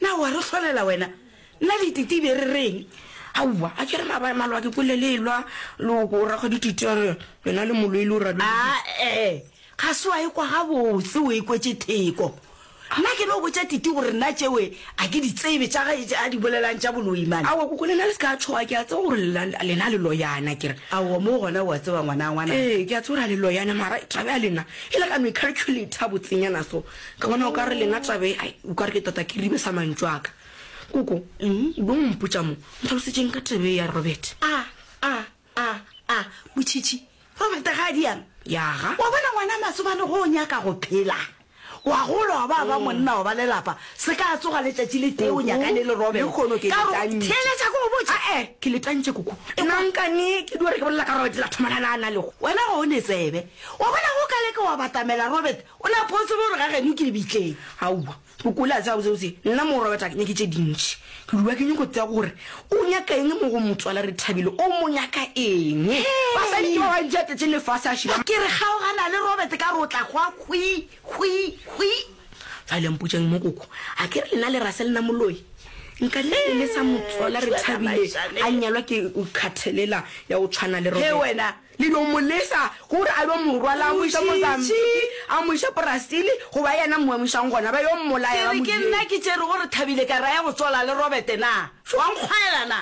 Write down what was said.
Na o a re hlolela wena? Nna le Titi e be re reng? Aowa, a ke re ra ba malwa ke kwele le elwa loko o rakgwa dititi a re wena le moloi le o rabe. Ae, ga se wa e kwa gabotse, o e kwetše theko. Nna ke no botša Titi gore nna tšewe a ke di tsebe tša gae tše a di bolelang tša boloi mane. Aowa koko lena le se ka tšhoga, ke a tseba gore lena le loyana. Ke re, Aowa, moo gona o a tseba ngwana wa ngwanaka. Ee, ke a tseba gore a le loyana mara taba ya lena e le ka no e calculator botsenyana so. Ka bona o ka re lena tabe ai o ka re ke tota kiribe sa mantšu a ka. Koko, eng o be o mpotša mo? Ntlhalosetšeng ka tabe ye ya Robert. A, a, a, a, Motšhitšhi, Robert ga a diame. Ya ga. Wa bona ngwana Masobane ge o nyaka go phela, wa gola wa ba ba monna wa ba lelapa, se ka tsoga letšatši le tee o Koko, nyakane le Robert. lehono ke Ka go letantše. theeletša ke go botša. A-e, ke letantše koko. Nna nkane ke di gore ke bolela ka Robert la thomana le a na lego. Wena ga o ne tsebe. Wa bona ge o ka leka wa batamela Robert, O ne a possible gore ga geno ke lebitleng? Aowa. O kole a tseba botsebotse, nna morwa wa tag nyake tše dintši. Ke lua ke nyoko tsea gore o nyaka eng mo go motswala Rethabile, o mo nyaka eng? Basadi ke ba bantši a tletšeng lefase a šiba. Ke re kgaogana le Robert ka rotla gwa hwi, hwi, hwi. Bjale mpotšeng mokoko, a ke re lena le ra se lena moloi? Nka le elesa motswala Rethabile a nyalwa ke nkgathelela ya go tshwana le Robert? He wena, Le no mo lesa gore a yo mo rwala a mo iša Mozambique, a mo iša Brazil, goba yena mo emišang gona, ba yo mmolaya, ba mo dietša. Ke re ke nna ke tšere gore Thabile ka raya go tšola le Robert na? Tšoang kgwaela na?